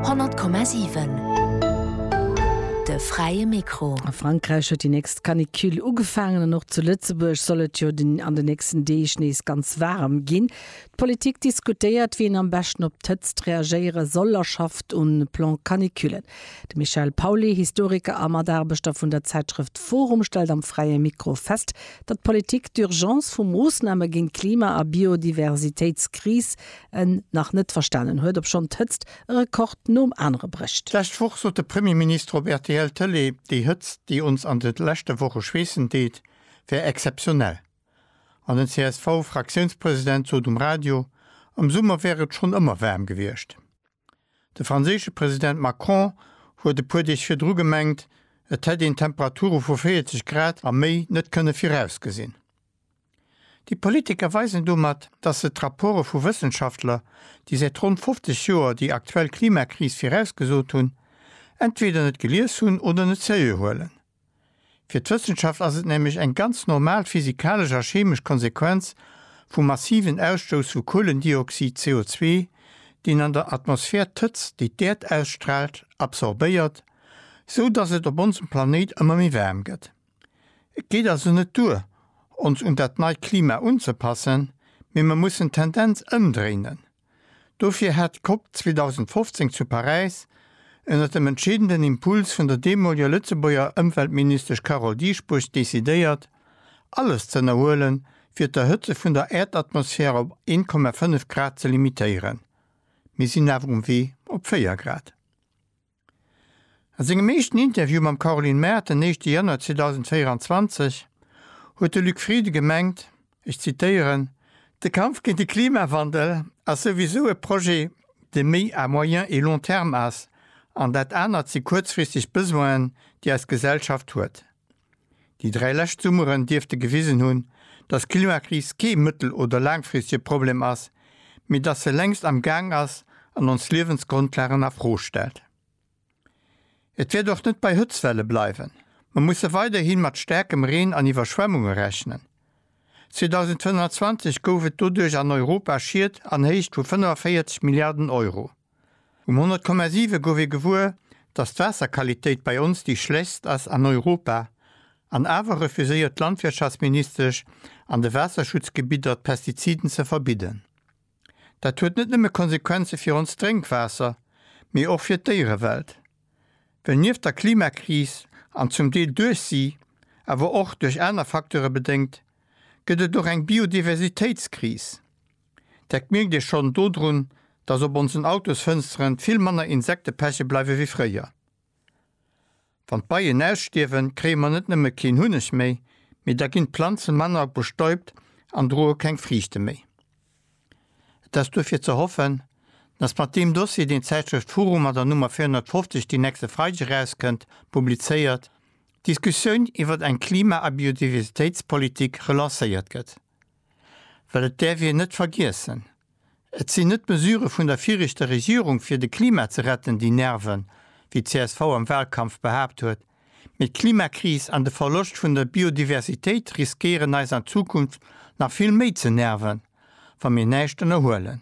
100,7 De fräie Mikro. A Frankräich huet déi nächst Canicule ugefaangen an och zu Lëtzebuerg soll et jo an de nächsten Deeg nees ganz waarem ginn. D'Politik diskutéiert, wéi een am beschten op d'Hëtzt reagéiere soll a schafft un Plan Canicule. De Michel Pauly, Historiker a Mataarbechter vun der Zäitschrëft forum stellt am fräie Mikro fest, datt d'Politik d'Urgence vu Moossname géint d'Klima a Biodiversitéitskris en nach net verstanen huet, obschonn d'Hëtzt e Rekord nom anere brécht. D'lescht Woch sot de Premierminister op rtl Tëlee, déi Hëtzt, déi ons an de leschte Woche schweessen deet, wär exzeptionell. An den CSV-Fraktiounspresident sot um Radio, am Summer wär et schonn ëmmer waarm gewiescht. De franséische President Macron huet e puer Deeg virdru gemengt, et hätt een Temperature vu 40 Grad a méi net kënne virausgesinn. Déi Politiker weisen domat, datt se d'Rapporte vu Wëssenschaftler, déi säit ronn 50 Joer déi aktuell Klimakris virausgesot hunn, entweder net gelies hunn oder net seriö huelen. Fir d'Wëssenschaft ass et nämlech eng ganz normal physikalesch a cheemesch Konsequenz vum massiven Ausstouss vu Kuelendioxid, CO2, deen an der Atmosphär d'Hëtzt, déi d'Äerd ausstraalt, absorbéiert, sou datt et op onsem Planéit ëmmer méi waarm gëtt. Et geet also net duer, ons un dat neit Klima unzepassen, mee mer mussen d'Tendenz ëmdréinen. Dofir hat d'COP 2015 zu Paräis, ënnert dem entscheedenden Impuls vun der deemoliger Lëtzebuerger Ëmweltministesch Carole Dieschbourg, decidéiert, alles z'ënnerhuelen, fir d'Erhëtze vun der Äerdatmosphär op 1,5 Grad ze limitéieren. Mir sinn awer um Wee op 4 Grad. A sengem éischten Interview mam Caroline Mart den éischte Januar 2024 huet de Luc Frieden gemengt, ech zitéieren, De Kampf géint de Klimawandel ass souwisou e Projet, dee méi à moyen et long terme ass, an dat anert si kuerzfristeg Besoinen, déi eis Gesellschaft huet. Déi dräi lescht Summeren dierfte gewisen hunn, dass d'Klimakris kee mëttel oder laangfristege Problem ass, mee dass se längst am Gaang ass an ons Liewensgrondlagen a Fro stellt. Et wäert och net bei Hëtztwelle bleiwen. Mer musse weiderhi mat staarkem Reen an Iwwerschwemmunge rechnen. 2025 gouf et doduerch an Europa Schied an Héicht vu 45 Milliarden Euro. Um 100,7 gouf ee gewuer, datt d'Waasserqualitéit bei ons déi schlechtst ass an Europa, an awer refuséiert d'Landwirtschaftsministesch an de Waasserschutzgebidder d'Pestiziden ze verbidden. Dat huet net nëmme Konsequenze fir ons Drénkwaasser, mee och fir d'Déierewelt. Well nieft der Klimakris, an zum Deel duerch si, awer och duerch aner Facteure bedéngt, gëtt et och eng Biodiversitéitskris. Dat mierkt ee schonn dodrun, dass op onsen Autosfënsteren vill manner Insekte peche bleiwe wéi fréier. Wann d'Beien ausstierwen, kréie mer net nëmme keen Hunneg méi, mee da ginn d'Planze manner bestäubt an droe keng Friichte méi. Et ass duerfir ze hoffen, dass mat deem Dossier, deen d'Zäitschrëft Furu mat der Nummer 450, déi nächste Freideg erauskënnt, publizéiert, d'Diskussioun iwwert eng Klima a Biodiversitéitspolitik relancéiert gëtt. Well et däerf een net vergiessen, et sinn net d'Mesure vun der viregter Regierung fir de Klima ze retten, déi nerven, wéi csv am Wahlkampf behaapt huet, mee d'Klimakris an de Verloscht vun der Biodiversitéit riskéieren eis an Zukunft nach vill méi ze nerven, wa mir näischt ënnerhuelen.